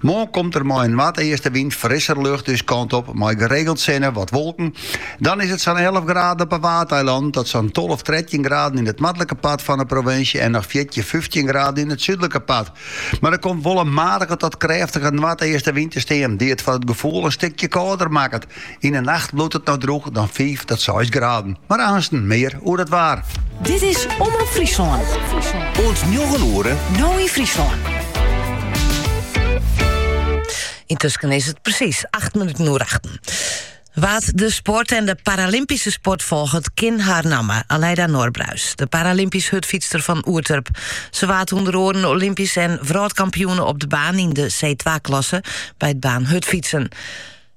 Moarn komt der mei in noardeastewyn frisser lucht ús kant op, mei geregeld sinne wat wolken. Dan is it sa'n elf graden op 'e Waadeilannen tot sa'n tolf, trettjin graden yn it noardlike part fan 'e provinsje en noch fjirtjin, fyftjin graden yn it súdlike part. Mar der komt wol in matige tot krêftige noardeastewyn te stean, dy't it foar it gefoel in stikje kâlder makket. Yn 'e nacht bliuwt it dan drûch, dan fiif tot seis graden. Mar aansten mear oer it waar. Dit is Omrop Fryslân. Oant njoggen oere, No yn Fryslân. Intusken is it presiis acht minuten oer achten. Wa't de sport en de Paralympyske sport folget, kin har namme, Alyda Norbruis. De Paralympysk hurdfytster fan Oerterp. Ze waard ûnder oaren Olympysk en wrâldkampioene op de baan yn de C2-klasse by it baanhurdfytsen.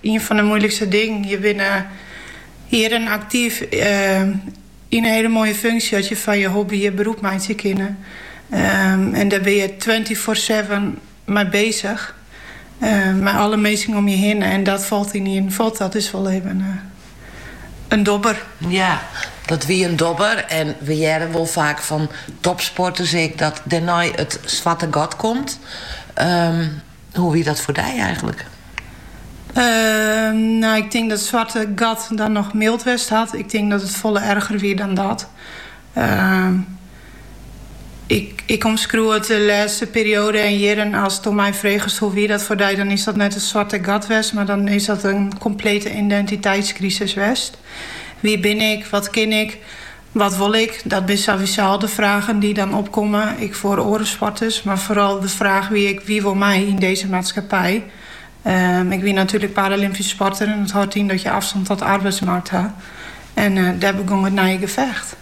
Ien fan de moeilikste dingen. Je binne jierren aktyf yn in hiele moaie funksje dat je fan je hobby je beroep meitsje kinne. En dêr bin je twenty four seven mei besich. Mei alle minsken om je hinne en dat falt ynienen fuort. Dat is wol even in dobber. Ja, dat wie in dobber en we hearre wol faak fan topsporters ek dat dêrnei it swarte gat komt. Hoe wie dat foar dy eigenlik? No, ik tink dat swarte gat dan noch mild west hat. Ik tink dat it folle erger wie dan dat. Ehm, ik, ik omskriuw it de lêste perioade en jierren asto my fregest hoe wie dat foar dy, dan is dat net in swarte gat west, mar dan is dat in komplete identiteitskrisis west. Wie bin ik? Wat kin ik? Wat wol ik? Dat binne sowieso al de fragen dy't dan opkomme, ek foar oare sporters. Mar foaral de fraach wie ek, wie wol my yn dizze maatskippij? Ik wie natuerlik paralympysk sporter en dat hâldt yn dat je afstand tot de arbeidsmarkt ha. En dêr begong it nije gefecht.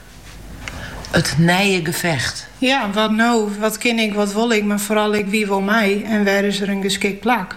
It nije gefecht? Ja, wat no? Wat kin ik, wat wol ik, mar foaral ek wie wol my en wêr is der in geskikt plak?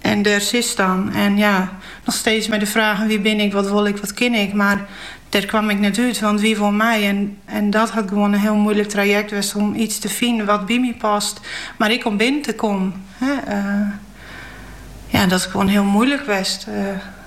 En dêr sitst dan. En ja, noch steeds mei de fragen, wie bin ik, wat wol ik, wat kin ik. Mar dêr kwam ik net út, want wie wol my? En en dat hat gewoan in hiel moeilik trajekt west om iets te finen wat by my past, mar ek om binnen te kommen. Hè, eh, ja, dat is gewoan hiel moeilik west. Eh,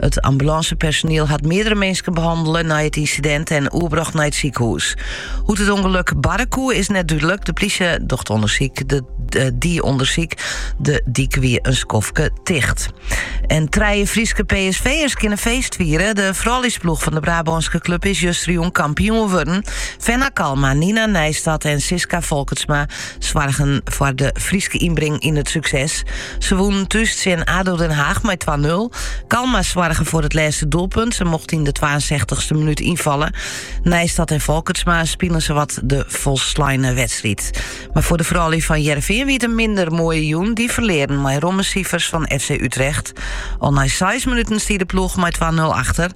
It ambulancepersoniel hat meerdere minsken behandele nei it incident en oerbrocht nei it sikehûs. Hoe't it ûngelok barre koe is net dúdlik. De plysje docht ûnder, dy ûndersyk. De dyk wie in skoftke ticht. En trije Fryske PSV'ers kinne feest fiere. De frouljusploech fan de Brabânske klub is justerjûn kampioen wurden. Fenna Kalma, Nina Nijstad en Sisca Folkertsma soargen foar de Fryske ynbring yn it sukses. Se wûnen thús tsjin ADO Den Haag mei 2-0. Kalma soargen foar it lêste doelpunt. Se mocht yn de 62e minút ynfalle. Nijstad en Folkertsma spilen sawat de folsleine wedstriid. Mar foar de froulju fan Hearrenfean wie it in minder moaie jûn. Die ferlearen mei romme sifers fan FC Utrecht. Al nei 6 minuten stie de ploech mei 2-0 achter.